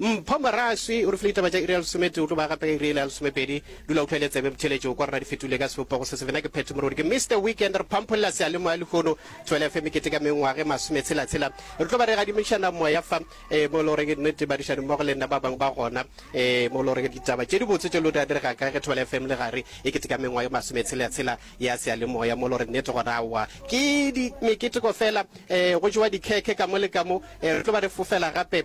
Mpho Moraswi o re file ditaba tša iri ya lesometee, o tlo ba gape ka iri yela ya lesomepedi. Dula o tlwaele tsebe motheeletši o kwa rena di fetogile ka sebopogo se se. Bena ke Phetho Morodi, ke Mister Weekend, re phampholela seyalemoya lehono. Thobela FM e keteka mengwaga e masometshela-tshela. Re tlo ba re gadimišana moya fa, ee, mo e le gore ke nnete, badišani mmogo le nna ba bangwe ba gona, ee, mo e le gore ditaba tše dibotse tše lo di a direga kae ge Thobela FM le gare e keteka mengwaga e masometshela-tshela ya seyalemoya, mo e le gore nnete gona aowa ke di, meketeko fela, ee, go jewa dikhekhe ka mo le ka mo. Ee, re tlo ba re fofela gape.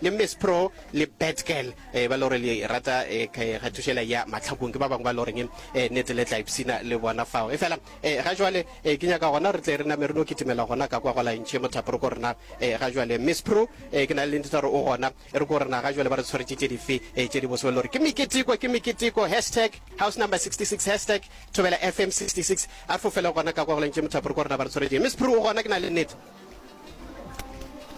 le Miss Pro le Bad Girl eh, ba lore le rata eh, kgathušela ya mahlakong ke ba bangwe ba loreng eh, nete le tla ipsina le bona fao e fela eh, ga jwale eh, ke nyaka gona re tle re name re no kitimela gona ka kwa go laentšhe mothapo re ko rena eh, ga jwale Miss Pro eh, ke na le ntita gore o gona e re ko rena ga jwale ba re tshwaretše tše dife eh, tše di bose ba lore ke meketiko ke meketiko hashtag house number 66 hashtag thobela fm 66 a re fofele gona ka kwa go laentšhe mothapo re ko rena ba re tshwaretše Miss Pro o gona ke na le nete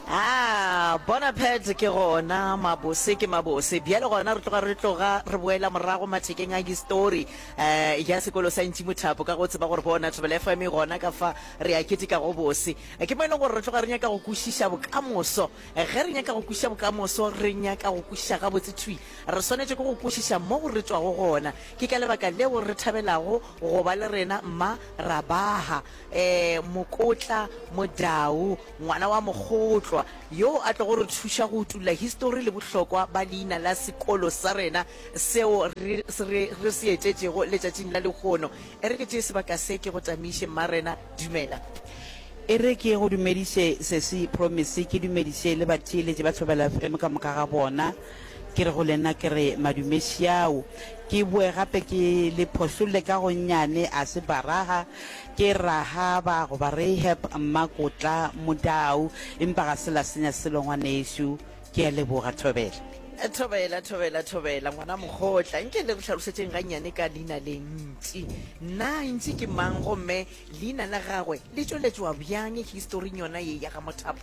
Ah, bona pet ke gona mabose ke mabose bjale gona re tloga re tloga re boela morago mathekeng a histori um ya sekolo sa ntši mothapo ka go tseba gore bona thabela fm e gona ka fa re a keteka go bose eh, ke mo e leng gore re tloga re nyaka go kwešiša bokamoso eh, ge re nyaka go kwešiša bokamoso re nyaka go kwešiša gabotse thwi re swanetše ke go kwešiša mo re tswago gona ke ka lebaka leo re thabelago go ba le rena mma rabaha Ee, Mokotla Modau, ngwana wa Mokgotlwa, yoo a tlogo re thuša go utulla histori le bohlokwa ba leina la sekolo sa rena seo re re, re se etetšego letšatšing la lehono. E re ke tšee sebaka se ke go tamiše, Mma Rena. Dumela. E re ke go dumediše, Sesi Promise, ke dumediše le batheeletši ba Thobela FM ka moka ga bona. Ke re go lena, ke re, Madumesiao, ke boe gape ke le phošolle ka go nnyane, a se Baraga, ke Rahaba, goba Rahab, Mmakotla, Modau, empa ga se la senya selo, ngwanešu. Ke a leboga. Thobela. Thobela, thobela, thobela, ngwana mokgotla. Nke le re hlalošetšeng gannyane ka leina le, Ntši. Na Ntši ke mang, gomme leina la gagwe le tšweletšwa bjang historing yona ye ya ga Mothapo?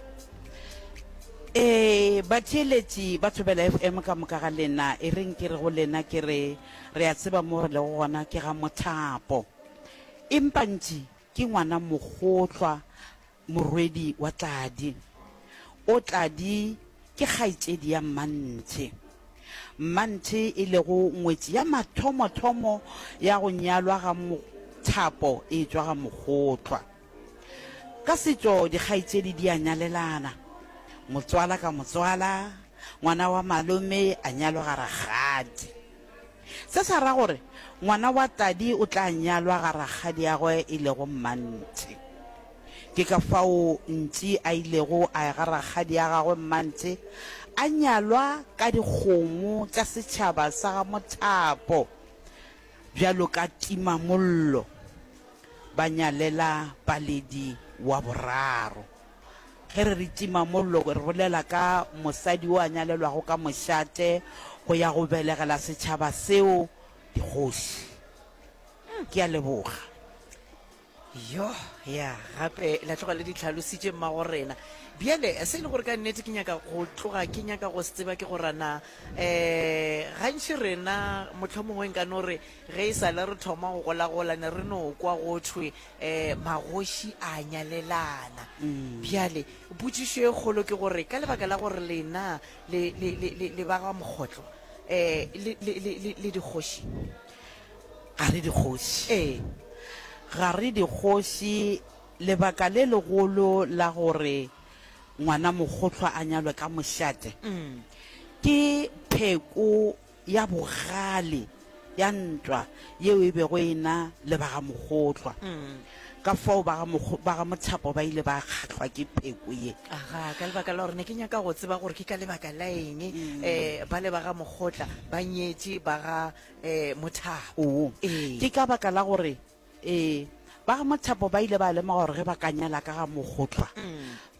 ee batheeletši ba thobela fm ka moka ga lena e reng ke re go lena ke re re a tseba mo re lego gona ke ga mothapo empantši ke ngwana mogotlwa morwedi wa tladi o tladi ke kgaitšedi ya mmanthe mmanthe e lego ngwetši ya mathomothomo ya go nyalwa ga mothapo e tšwa ga mogotlwa Ka setšo dikgaetšedi di a nyalelana, motswala ka motswala, ngwana wa malome a nyalwa ga rakgadi. Se sa ra gore ngwana wa tadi o tla nyalwa ga rakgadiagwe e lego mmanthe. Ke ka fao Ntši a ilego a ya ga rakgadi a gagwe mmanthe a nyalwa ka dikgomo tša setšhaba sa ga Mothapo. Bjalo ka timamollo, ba nyalela Paledi wa boraro. Ge re re timamollo, re bolela ka mosadi o a nyalelwago ka mošate go ya go belegela setšhaba seo dikgoši. Ke a leboga. yo ya gape la tloga le di tlhalositše mmagorena bjale se e le gore ka nnete ke nyaka go tloga ke nyaka go se tseba ke gorana um eh, gantši rena motlho mongwe nka no re ge e sale re thoma go golagola ne re no kwa go thwe um magoši a nyalelana mm. bjale potšišo e kgolo ke gore ka lebaka la gore lena le ba ga mokgotlo um eh, le dikgoši Ga re dikgoši. Ee, ga re dikgoši. Lebaka le legolo la gore ngwanamogohlwa a nyalwe ka mošate ke pheko ya bogale ya ntwa yeo e bego e na le ba ga Mogohlwa. Ka fao ba ga Mothapo ba ile ba kgahlwa ke pheko ye. Aha, ka lebaka la gore ne ke nyaka go tseba gore ke ka lebaka la eng bale ba ga Mogotla ba nyetše ba ga eh, mothapo Oo. Ee. ke ka baka la gore eh, ba ga mothapo ba ile ba lemoga gore ge ba ka nyala ka ga mogotlwa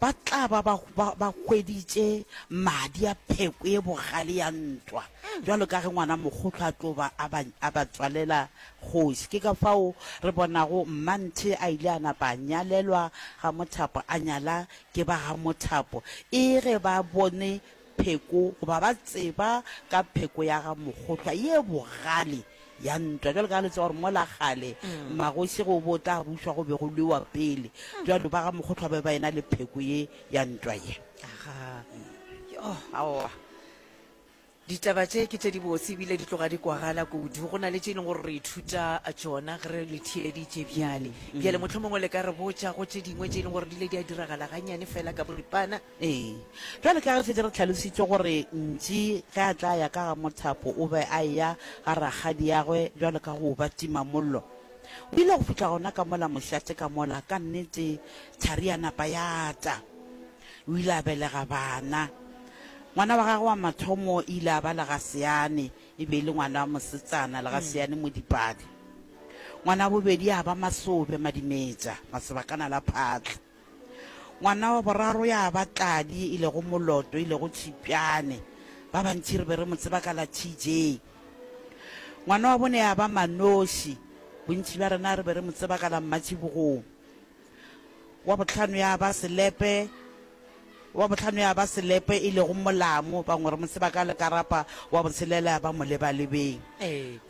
ba tla ba ba- ba- ba hweditše madi a pheko e bogale ya ntwa jalo ka ge ngwana mogotlwa a tlo ba a ba- a ba tswalela kgoši ke ka fao re bonago mmanthe a ile a napa a nyalelwa ga mothapo a nyala ke ba ga mothapo e ge ba bone pheko goba ba tseba ka pheko ya ga Mokgohlwa ye bogale ya ntwa. Jwalo ka ha le tseba gore mola kgale magoši go bo tla bušwa go be go lwewa pele, jwalo ba ga Mokgohlwa ba be ba ena le pheko ye ya ntwa ye. Aga, yo, aowa. Ditaba tše ke tše dibotse ebile di tloga di kwagala kudu. Go na le tše e leng gore re ithuta tšona ge re le theeleditše bjale. Bjale mohlomongwe le ka re botša go tše dingwe tše e leng gore di ile di a diragala ganyane fela ka boripana. Ee. Bjale ka ge re šetše re hlalošitše gore Ntši ge a tla ya ka ga mothapo o be a eya ga rakgadiagwe bjalo ka go ba timamollo, o ile go fihla gona ka mola mošate ka mola. Ka nnete, thari ya napa ya ta. O ile a belega bana. Ngwana wa gagwe wa mathomo e ile ya ba Legaseane, e be e le ngwana wa mosetsana, Legaseane Modipadi. Ngwana wa bobedi ya ba Masobe Madimetša, Masobakana la Phatla. Ngwana wa boraro ya ba Tladi, e lego Moloto, e lego Tšhipjane. Ba bantši re be re mo tseba ka la TJ. Ngwana wa bone ya ba Manoši, bontši bja rena re be re mo tseba ka la Mmatšhibogong. Wa bohlano ya ba Selepe, Wa bohlano ya ba selepe, e lego molamu, bangwe re mo tseba ka lekarapa, wa botshelela ya ba molebalebeng.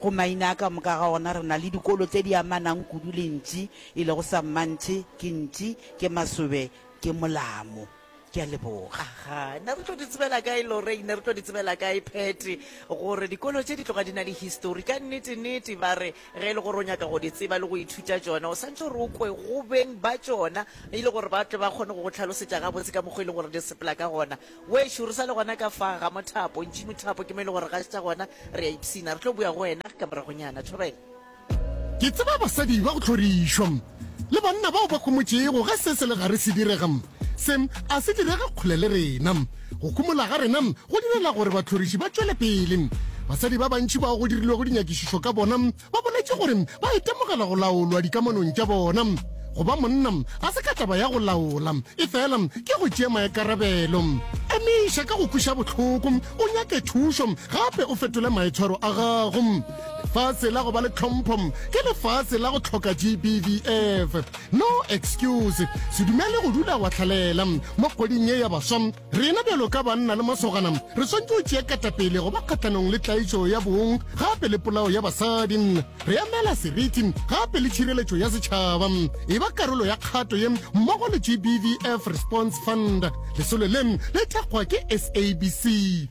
Go maina a ka moka ga ona re na le dikolo tše di amanang kudu le ntši, e lego sammantšhe, ke ntši, ke masobe, ke molamu. Ke a leboga. Aha, ne re tlo di tsebela kae, Lorraine? Ne re tlo di tsebela kae, Patty, gore dikolo tše di tloga di na le histori? Ka nnete-nnete, ba re Ge e le gore o nyaka go di tseba le go ithuta tšona, o swanetše gore o kwe go beng ba tšona e le gore ba tle ba kgone go go hlalosetša gabotse ka mokgwa e leng gore di sepela ka gona. Wešo, re sa le gona ka fa ga mothapo, ntši mothapo ke mo e lego gore ga se tša gona, re a ipshina. Re tlo boya go wena ka moragonyana. Thobela. Ke tseba basadi ba go hlorišwa. Le banna bao ba homotšego, ge se se le gare se direga, se a se direge kgole le rena. Go humola ga rena go direla gore bahloriši ba tšwele pele. Basadi ba bantši bao go dirilwego dinyakišišo ka bona ba boletše gore ba itemogela go laolwa dikamanong tša bona. Go ba monna ga se ka taba ya go laola, efela ke go tšea maikarabelo. Emiša ka go kweša bohloko, o nyake thušo gape o fetole maitshwaro a gago. Lefase la go ba le tlhompho ke lefase la go tlhoka GBVF. No excuse. Se dumele go dula wa hlalela. Mo kgweding ye ya baswa, rena bjalo ka banna le masogana re swantše go tšea katapele go ba kgahlanong le tlaišo ya bong gape le polao ya basadi. Re emela seriti gape le tšhireletšo ya setšhaba. E ba karolo ya kgato ye mmogo le GBVF Response Fund. Lesolo le le thekgwa ke SABC.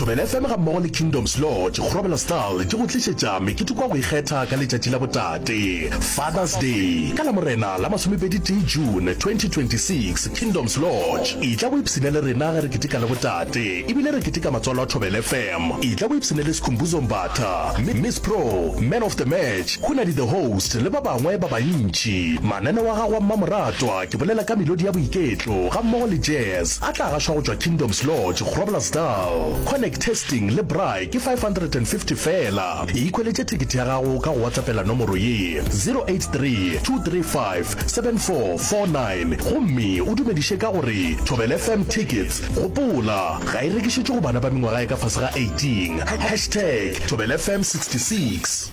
Thobela FM ga mmogo le Kingdoms Lodge Grobela Stal di go tlišetša meketeko ya go ikgetha ka letšatši la botate, Father's Day, ka Lamorena la masomepedi tee June 2026. Kingdoms Lodge, etla o ipshine le rena ge re keteka le botate. E bile re keteka matswalo a Thobela FM. Etla o ipshine le Skhumbuzo Mbatha, Miss Pro, Man of the Match, Khunadi the Host le ba bangwe ba bantši. Mananeo a gago a mmamoratwa, ke bolela ka melodi ya boiketlo gammogo le jazz, a tla gašwa go tšwa Kingdoms Lodge, Groblersdal. Connect testing le braai ke 550 feela. E ikhweletše thekete ya gago ka go WhatsAppela nomoro ye, 0832357449 gomme o dumediše ka go re, Thobela FM Tickets. Gopola, ga e rekišetšwe go bana ba mengwaga e ka fase ga 18. Hashtag Thobela FM 66.